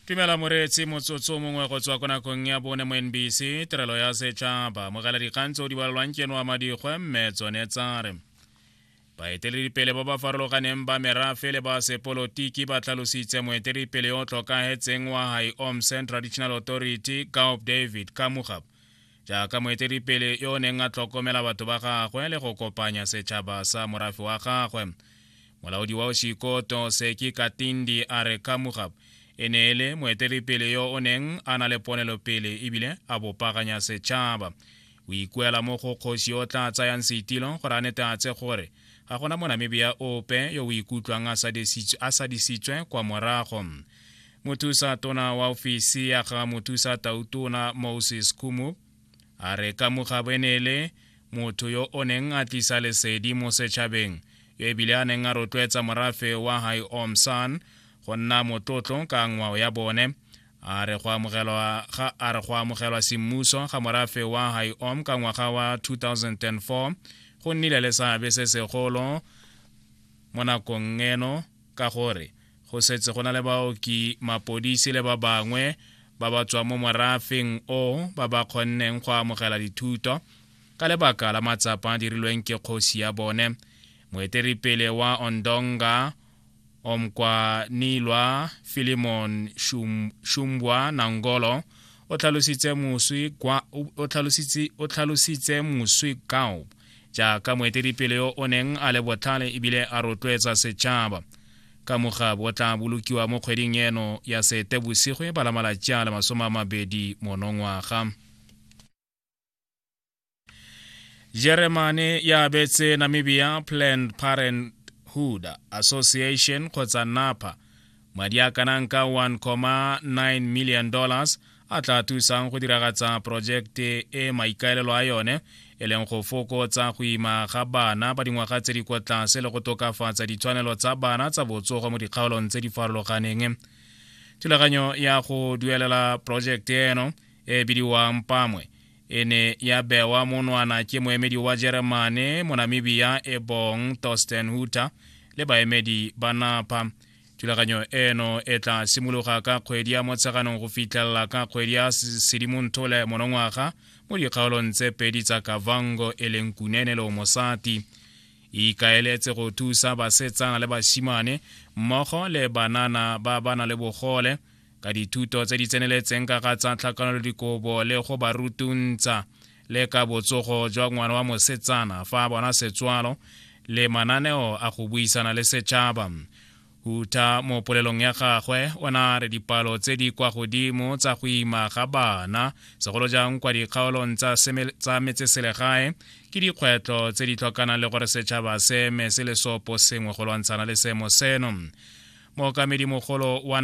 tumela moreetsi motsotso mongwe go tswa ko nakong ya bone mo nbc tirelo ya setšhaba mogela dikgang tse o di balelwang ke noa madikgwe mme tsone tsa re baeteledipele ba ba farologaneng ba merafe le ba sepolotiki ba tlhalositse moeteledipele yo o tlhokagetseng wa high omsen traditional authority gaup david kamugap jaaka moeteledipele yo o neng a tlhokomela batho ba gagwe le go kopanya setšhaba sa morafe wa gagwe molaodi wa oshikoto seki katindi a re kamugab e ne e le moeteledipele yo o neng a na le ponelopele ebile a bopaganya setšhaba o ikuela mo go kgosi yo o tla tsayang seitilo gore a neteatse gore ga gona monamibia ope yo o ikutlwang a sadisitswe kwa morago mothusa tona wa ofisi ya ga mothusa tautona moses kumu a re ka mogabenele motho yo o neng a tlisa lesedi mo setšhabeng yo ebile a neng a rotloetsa morafe wa hai omsan go nna motlotlo ka ngwao ya bone a re go amogelwa semmuso ga morafe wa hai om ka ngwaga wa 2004 go nnile le seabe se segolo mo nakong eno ka gore go setse go na le baoki mapodisi le ba bangwe ba ba tswang mo morafeng o ba ba kgonneng go amogela dithuto ka lebaka la matsapa a dirilweng ke kgosi ya bone moeteripele wa ondonga omkwanilwa filimon shumbwa nangolo o tlhalositse moswi kao jaaka moeteledipele yo o neng a le botlhale ebile a rotloetsa setšhaba ka mogabo o tla bolokiwa mo kgweding eno ya seetebosigo e bala malatsi a le masome a mabedi monongwaga jeremane ya abetse namibia planned parenthood association kgotsa napa Madi a kanang ka 1.9 million dollars a tla thusang go diragatsa porojekte e maikaelelo a yone e leng go fokotsa go ima ga bana ba dingwaga tse di kwa tlase le go tokafatsa ditshwanelo tsa bana tsa botsogo mo dikgaolong tse di farologaneng thulaganyo ya go duelela porojekte eno e bidiwang pamwe e ne ya bewa monwana ke moemedi wa jeremane monamibia ebong torsten huter le baemedi ba napa thulaganyo eno e tla simologa ka kgwedi ya motsheganong go fitlhelela ka kgwedi ya sedimontole monongwaga mo dikgaolong tse pedi tsa kavango e leng kunene le omosati e ikaeletse go thusa basetsana le basimane mmogo le banana ba ba na le bogole ka dithuto tse di tseneletseng ka ga tsa tlhakanelodikobo le go ba rutuntsha le ka botsogo jwa ngwana wa mosetsana fa a bona setswalo le mananeo a go buisana le setšhaba huta mo polelong ya gagwe o ne a re dipalo tse di kwa godimo tsa go ima ga bana segolo jang kwa dikgaolong tsa metseselegae ke dikgwetlho tse di tlhokanang le gore setšhaba se eme se le sopo sengwe go lwantshana le seemo seno mookamedi mogolo wa